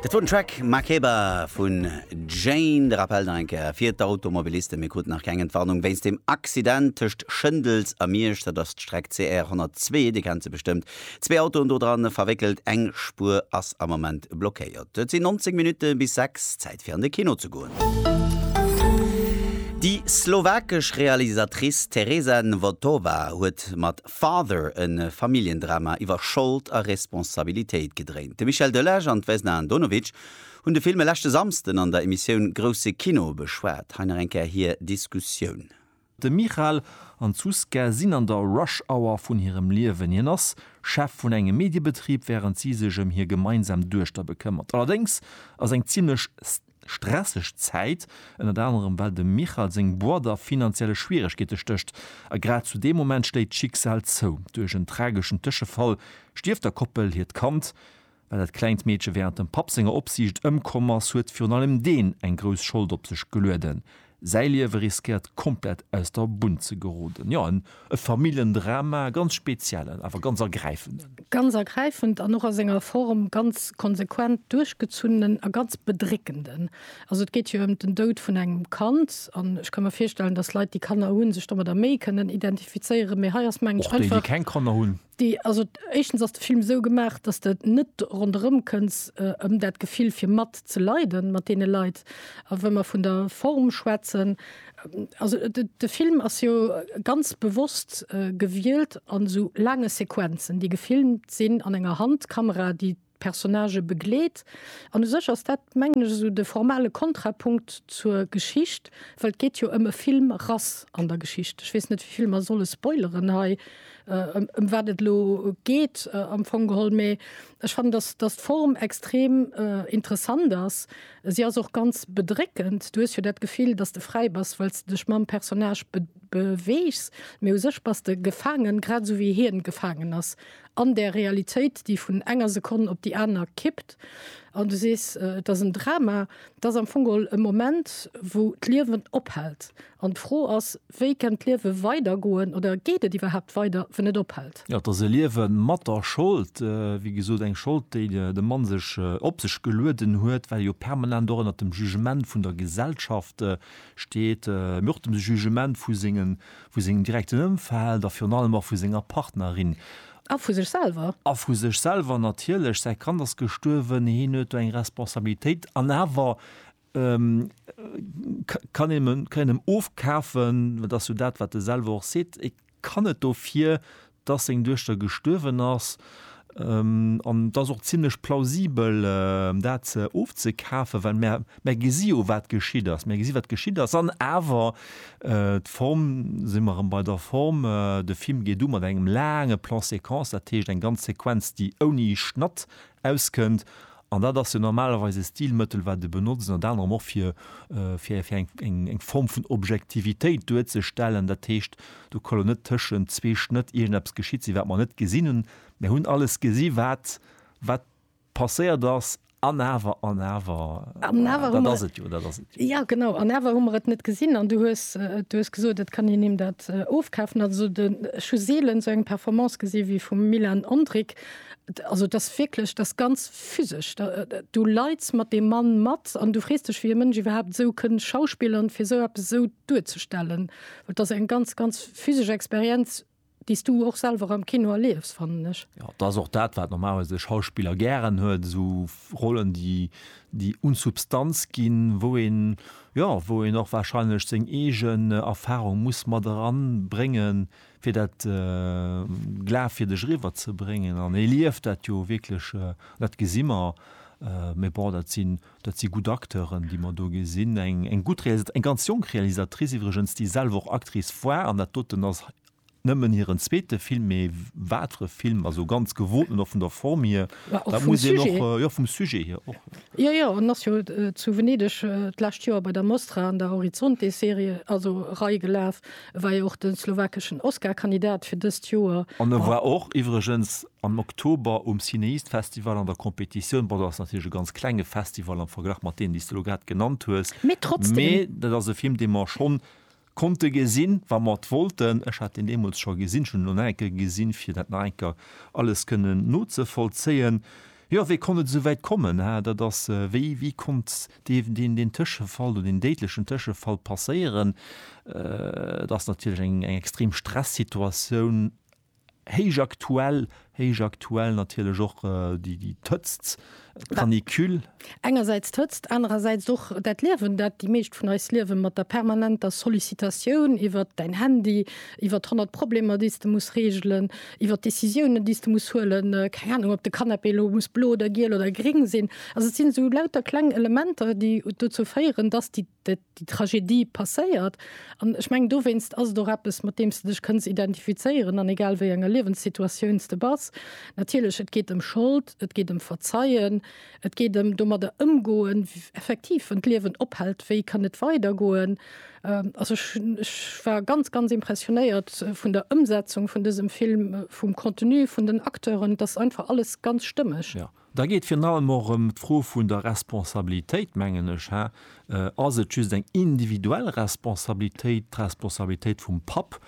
Dat wor den Track Makeba vun Jane. De Rappel nach eng Kéier fir d'Automobilisten, Mir kruten nach keng Entwarnung wéinst dem Accident tëscht Schëndels a Miersch. Dat ass d'Streck CR 102, Dir kennt se bestëmmt, Zwee Autoen do dran verwéckelt, eng Spuer ass am Moment blockéiert. Et sinn 19 Minutte bis 6, Zäit fir an de Kino ze goen. Déi slowakesch Realisatrice Tereza Nvotová huet mat Father e Familljendrama iwwer Schold a Responsabilitéit gedréint. De Michel Delage an d'Vesna Andonovic hunn de Film e leschte Samsden an der Emissioun Grousse Kino beschwat. Hei nach eng Kéier hir Diskussioun. De Michal an d'Zuzka sinn an der Rush Hour vun hirem Liewen. Hien ass Chef vun engem Mediebetrib, wärend si sech ëm hir gemeinsam Duechter bekëmmert. Allerdéngs ass eng zimmlech stresseg Zäit, ënnert anerem well dem Michal seng Boîte a finanzielle Schwieregkeete stécht. A grad zu deem Moment schléit d'Schicksal zou. Duerch en trageschen Tëschefall stierft der Koppel hiert Kand. Well dat klengt Meedche wärend dem Papp senger Opsiicht ëmkomm ass, huet virun allem deen eng grouss Schold op sech gelueden. Säi Liewe riskéiert komplett aus der Bunn ze geroden. Jo, e Familljendrama, e ganz speziellen, awer ganz ergräifenden. Ganz ergräifend an och a senger Form ganz konsequent duerchgezunnenen a ganz bedréckenden. Also et geet jo ëm den Doud vun engem Kand an ech ka mir virstellen, datt Leit, déi Kanner hunn, sech domadder méi kënnen identifizéieren, mee hei ass, mengen ech, einfach. Och déi, déi keng Kanner hunn. Déi, also éischtens ass de Film esou gemaach, dass de net ronderëm kënns ëm dat Gefill fir mat ze leiden mat deene Leit. A wa mer vun der Form schwätzen, also de Film ass jo ganz bewosst gewielt an esou laange Sequenzen, déi gefilmt sinn an enger Handkamera, déi Personnagë begleet. An u sech ass dat, mengen ech, esou de formale Kontrapunkt zur Geschicht, well et geet jo ëm e Film Rass an der Geschicht. Ech weess net, wéi vill mer solle spoileren hei, ëm wat et elo geet am Fong geholl. Mee ech fannen, datt, datt d'Form extrem interessant ass. Si ass och ganz bedréckend. Du hues jo dat Gefill, datt s de fräi bass, well s de dech mam Personnage beweegs. Mee u sech bass de gefaangen, grad esou wéi hien gefaangen ass an där Realitéit, déi vun enger Sekonn op déi aner kippt an du sees, et ass en Drama, et ass am Fong geholl e Moment, wou d'Liewen ophält an d'Fro ass, wéi kennt d'Liewe weidergoen oder geet et iwwerhaapt weider, wann et ophält? Jo, et ass e Liewe mat der Schold, wéi gesot, eng Schold, déi de Mann sech op sech gelueden huet, well e jo permanent och ënnert dem Jugement vun der Gesellschaft steet, mee och dem Jugement vu sengen Vu sengem direkten Ëmfeld a virun allem och vu senger Partnerin. A vu sech selwer. A vu sech selwer natierlech. Säi Kand ass gestuerwen, hien huet do eng Responsabilitéit. An awer kann een him ofkafen, dat ass jo dat, wat e selwer och seet, e kann et dofir dass seng Duechter gestuerwen ass, an et ass och zimlech plausibel, dat ofzekafen, well mär gesi jo, wat geschitt ass, mär gesi wat geschitt ass. An awer, d'Form, si mer erëm bei der Form, de Film geet u mat engem laange Plan-séquence, dat heescht eng ganz Sequenz, déi ouni Schnatt Auskënnt. An dat ass jo normalerweis e Stilmëttel, wat e benotzt, ënnert anerem och fir, fir, fir eng, eng Form vun Objektivitéit duerzestellen. Dat heescht, do ka lo net tëschent zwee Schnëtt iergendeppes geschitt sinn, wat mer net gesinn hunn. Mer hunn alles gesi wat, wat passéiert ass. An awer, an awer, dat ass et jo, dat ass et jo. Jo, genau. An awer hu mer et net gesinn. An du hues, du hues gesot, et kann een him dat ofkafen. Also de, ech hu seelen esou eng Performance gesi wéi vum Milan Ondrick, Also et ass wierklech, et ass ganz physesch. Du leits mat deem Mann mat an du frees dech, wéi e Mënsch iwwerhaapt esou kënn schauspillern, fir esou eppes esou duerzestellen. Well et ass eng ganz, ganz physesch Experienz, déi s du och selwer am Kino erliefs, fannen ech. Jo, et ass och dat, wat normalerweis e Schauspiller gären huet, esou Rollen, déi, déi un Substanz ginn, wou een, jo, wou een och warscheinlech seng eegen Erfarung muss mat eranbréngen, fir dat Glaf fir dech eriwwer ze bréngen an e lieft dat jo wierklech, dat gesi mer. Mee bon, dat sinn, dat si gutt Acteuren, déi mer do gesinn. Eng, eng gutt Realisat-, eng ganz jonk Realisatrice iwwregens, déi selwer och Actrice war an dat doten ass nëmmen hiren zweete Film. Mee wat fir e Film, also ganz gewoten och vun der Form hier, dat muss een och, jo vum Sujet hier och. Jo, jo, en ass jo zu Venedeg d'lescht Joer bei der Mostra an der Horizonte-Serie, also Rei gelaf, E war jo och de slowakeschen Oscar-Kandidat fir dëst Joer. An e war och iwwregens am Oktober um Cineast-Festival an der Competitioun. Bon, dat ass natierlech e ganz klenge Festival am Verglach mat deenen, déi s de elo grad genannt hues. Mee trotzdem. Mee dat ass e Film, dee mer schonn konnte gesinn, wa mer et wollten. Ech hat en deemools scho gesinn. Ech hunn en elo nach eng Kéier gesinn, fir dat nach eng Kéier alles kënnen nozevollzéien. Jo, wéi konnt et esou wäit kommen? Dat ass, wéi, wéi konnt Dierf deen deen Tëschefall oder deen déidlechen Tëschefall passéieren, et ass natierlech eng extrem Stressituatioun, héich aktuell, héich aktuell natierlech och déi d'Hëtzt, d'Canicule. Engersäits d'Hëtzt, anerersäits och dat Liewen, dat déi meescht vun eis liewen, mat der permanenter Sollicitatioun iwwert däin Handy, iwwert honnert Problemer, déi s de muss reegelen, iwwer d'Décisiounen, déi s de muss huelen, keng Anung, ob de Canapé elo muss blo oder giel oder gréng sinn. Also et sinn esou lauter kleng Elementer, déi dozou féieren, dass déi déi Tragedie passéiert. An ech mengen, dowéinst ass et och eppes, mat deem s de dech kënns identifizéieren, an egal wéi enger Liewenssituatioun s de bass. Natierlech, et geet ëm Schold, et geet ëm Verzeien, Et geet ëm domadder ëmgoen, effektiv, wann d'Liewen ophält, wéi kann et weidergoen? Also ech war ganz, ganz impressionéiert vun der Ëmsetzung vun dësem Film, vum Contenu, vun den Acteuren. Et ass einfach alles ganz stëmmeg. Jo, da geet virun allem och ëm d'Fro vun der Responsabilitéit, mengen ech. Hä? Ass et just eng individuell Responsabilitéit, d'Responsabilitéit vum Papp,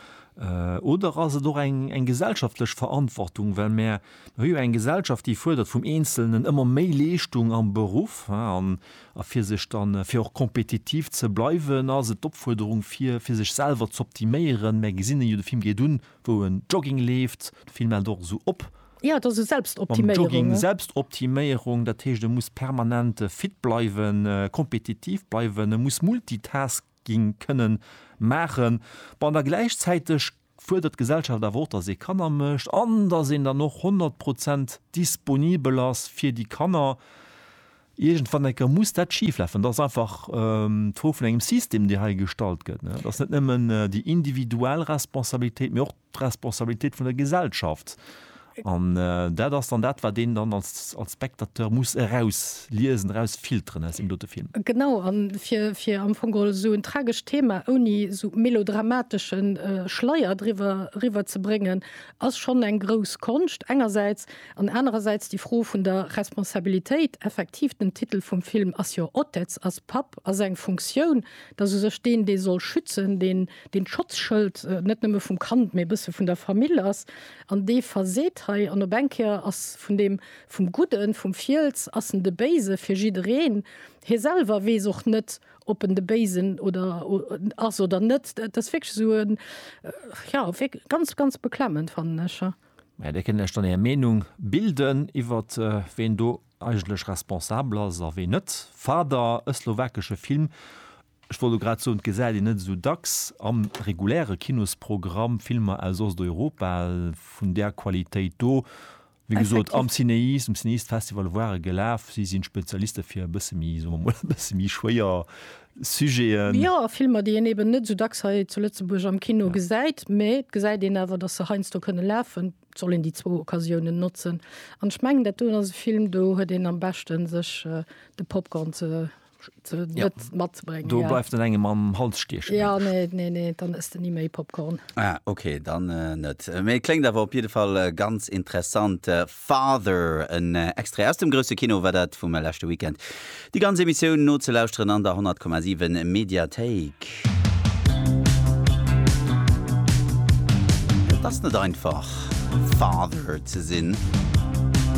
oder ass et och eng gesellschaftlech Verantwortung, well mär, Mir hu jo eng Gesellschaft, déi fuerdert vum Eenzelnen ëmmer méi Leeschtung am Beruff. A fir sech dann, fir och kompetitiv ze bleiwen, ass et d'Opfuerderung, fir fir sech selwer z'optiméieren. Mär gesinn en jo, de Film geet un, wou en Jogging leeft. De Film hält och esou op. Jo, et ass esou Selbstoptiméierung. Mam Jogging, Selbstoptiméierung. Dat heescht, e muss permanent fit bleiwen, kompetitiv bleiwen, e muss multitasken. ginn kënnen maachen, bon, da gläichzäiteg fuerdert d'Gesellschaft awer och, datt ee Kanner mécht an datt een dann och 100 Prozent disponibel ass fir déi Kanner. Iergendwann eng Kéier muss dat schiflafen. Dat ass einfach d'Fro vun engem System, dee hei gestallt gëtt. Et ass net nëmmen déi individuell Responsabilitéit, mee och d'Responsabilitéit vun der Gesellschaft. An dat ass dann dat, wat een dann als Spectateur muss erausliesen, erausfilteren aus deem dote Film. Genau, a fir am Fong geholl esou en tragescht Thema ouni esou melodramatesche Schleier driwwer eriwwerzebréngen, ass schonn eng grouss Konscht engersäits. An anerersäits déi Fro vun der Responsabilitéit, effektiv, den Titel vum Film ass jo Otec, ass Papp, ass eng Funktioun, et ass u sech deen, dee soll schützen, deen. deen d'Schotzschëld net nëmme vum Kand, mee e bësse vun der Famill ass, an dee verseet hei, an op eng Kéier ass vun deem, vum Gudden, vum Fiels, ass en de Béise fir jiddereen. Hie selwer weess och net, ob en de Béisen oder ass oder net. Et ass wierklech esou e, jo, ganz, ganz beklemmend, fannen ech. Mä Dir kënnt lech dann Är Meenung bilden iwwer ween do eigentlech responsabel ass a ween net. Fader, e slowakesche Film Ech wollt elo grad soen, et gesäit een net esou dacks am reguläre Kinosprogramm Filmer aus Osteuropa vun där Qualitéit do. Wéi gesot, am Cinéis, um Cinéistes-Festival ware gelaf, si sinn Spezialiste fir e bësse méi, soe mer emol, e bësse méi schwéier Sujeten. Jo, a Filmer, déi een eben net esou dacks hei zu Lëtzebuerg am Kino gesäit. Mee et gesäit een awer, datt se heiansdo kënne lafen. Et soll een déi zwou Occasiounen notzen. An ech mengen, dat doen ass e Film, do huet een am beschten, sech de Popcorn ze ja. matzebringen du ja. bleibst an engem am Hals stiechen ja nee nee nee dann ist nie mehr Popcorn ah, okay dann äh, net äh, mir klingt aber auf jeden Fall äh, ganz interessant äh, Father ein äh, extra aus dem größte Kino war dat vom äh, letzte Weekend die ganze Emission not zu lauschteren an der 10,7 Mediathek das net einfach Father zu sinn.